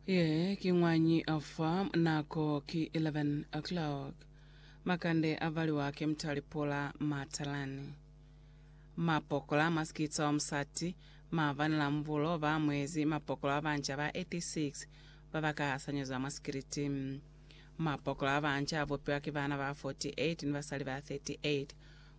Ye ki ñwañi fa nako ki 11 o'clock. Makande a valiwa ki mutali pula matalani. Mapokola ma sikitsa wa musati ma vanela mbulo ba mwezi mapokola ba banca ba 86 ba ba ka hasanyezwa mwa sikiliti. Mapokola a banca a bupiwa ki bana ba 48 ni basali ba 38.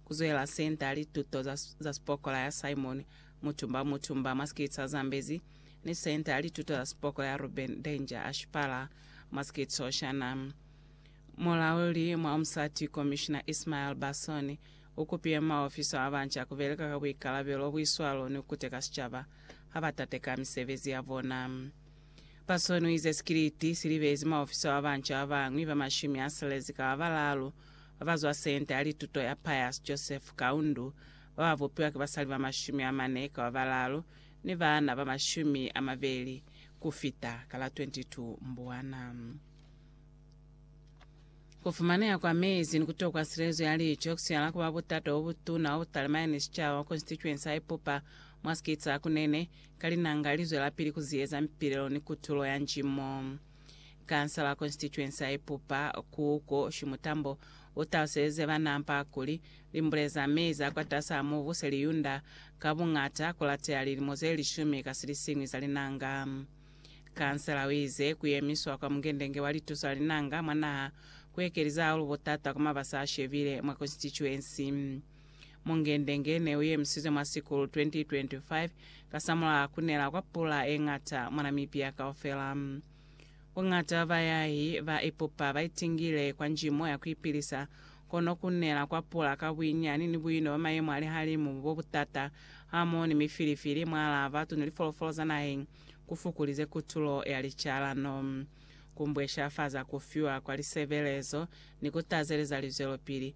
Ku zwela senta ya lituto za, za sipokola ya Simon Mutumba Mutumba, Maskitso a Zambezi, ni Senta ya Lituto za Sipoko ya Ruben Danger Ashipala, Maskitso Shana. Mulauli mwa Umsati Komishina Ismael Basson u kupiye maofiso a banca ku beleka ka buikalabelo, buiswalo ni ku kuteka sicaba ha ba tateka misebezi ya bona. Basson u ize sikiliti si libezi maofiso a banca ba bañwi ba mashumi a silezi ka ba balaalu ba ba zwa Senta ya Lituto ya Pius Joseph Kaundu ba ba bupiwa ki basali ba mashumi amane kaba balalu ni baana ba mashumi amabeli kufita ka la 22 Mbwana. Kufumaneha kwa mezi ni kutokwa silezo ya lico kusihala kuba butata bobutuna bwa butalima yani sicaba mwa konstituensi ya Ipupa mwa sikiti sa Kunene, ka linanga lizwelapili kuziyeza mipilelo ni kutulo ya njimo. Kansala Constituency ya Ipupa, Kuku Shimutambo, u taluselize ba Nampa kuli, limbule za mei za kwatasaa mubu se li yunda ka buñata ku lateya lilimo ze lishumi ka silisiñwi za linanga. Kansala u ize ku yemiswa kwa mungendenge wa lituso la linanga mwa naha ku ekeliza haulu butata kwa mabasa a shebile mwa Constituency. Mungendenge ne u yemisizwe mwa sikulu 2025 kasamulaho ku nela kwa pula ye ñata mwa Namibia kaufela. Buñata bwa bayahi ba ipupa ba itingile kwa njimo ya ku ipilisa, kono ku nela kwa pula ka buinyani ni buino bwa mayemo a lihalimu bo butata hamoho ni mifilifili mwalaa batu ni lifolofolo za naheng ku fukulize kutulo ya licalano, ku mbweshafaza ku fiwa kwa lisebelezo ni ku tazeleza lizwelopili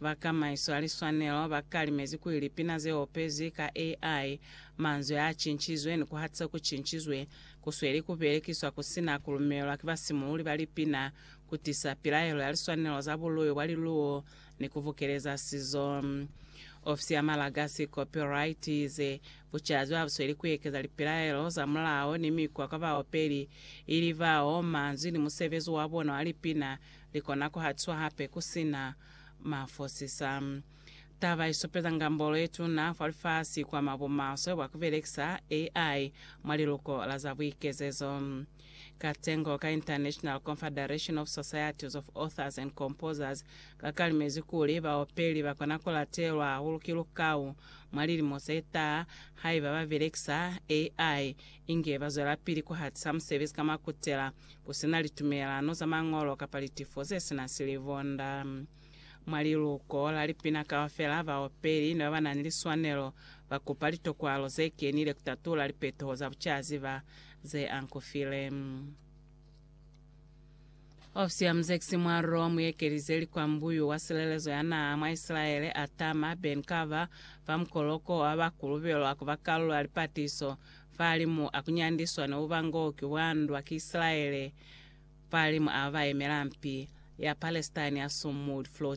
Ba kamaiso ya liswanelo ba kalimezi kuli lipina ze opezwi ka AI, manzwi a cincizwe ni ku hatisa ku cincizwe, ku sweli ku belekiswa ku si na ku lumelelwa ki basimululi ba lipina, ku tisa pilaelo ya liswanelo za buluyo bwa liluwo ni ku bukeleza sizo. Ofisi ya Malagasi Copyright i ize, Bucazi ba bu sweli ku ekeza lipilaelo za mulao ni mikwa kwa baopeli, ili bao manzwi ni musebezi wa bona wa lipina li kona ku hatiswa hape ku si na mafosisa. Taba i supeza ngambolo ye tuna fa lifasi kwa mwa bumaswe bwa ku belekisa AI mwa liluko la za buikezezo. Katengo ka International Confederation of Societies of Authors and Composers ka kalimezi kuli baopeli ba kona ku latelwa hahulu ki lukau mwa lilimo ze taha haiba ba belekisa AI inge ba zwelapili ku hatisa musebezi ka mwa kutela Ku si na litumelano za mañolo kapa litifo ze si na silivonda. Mwa liluko la lipina kaufela, baopeli ni ba ba na ni liswanelo ba kupa litokwalo ze kenile ku tatula lipetoho za bucaziba ze ankufile. Ofisi ya Muzekisi mwa Rome ye kelize likwambuyu wa silelezo ya naha mwa Isilaele, Atama Ben Carver, fa mukoloko wa bakulubelwa ku ba kalulo ya lipatiso Fahalimu a kunyandiswa ne uba ngo ki wandwa ki Isilaele fahalimu a ba yemela mpi ya Palestine ya Sumud, Flo.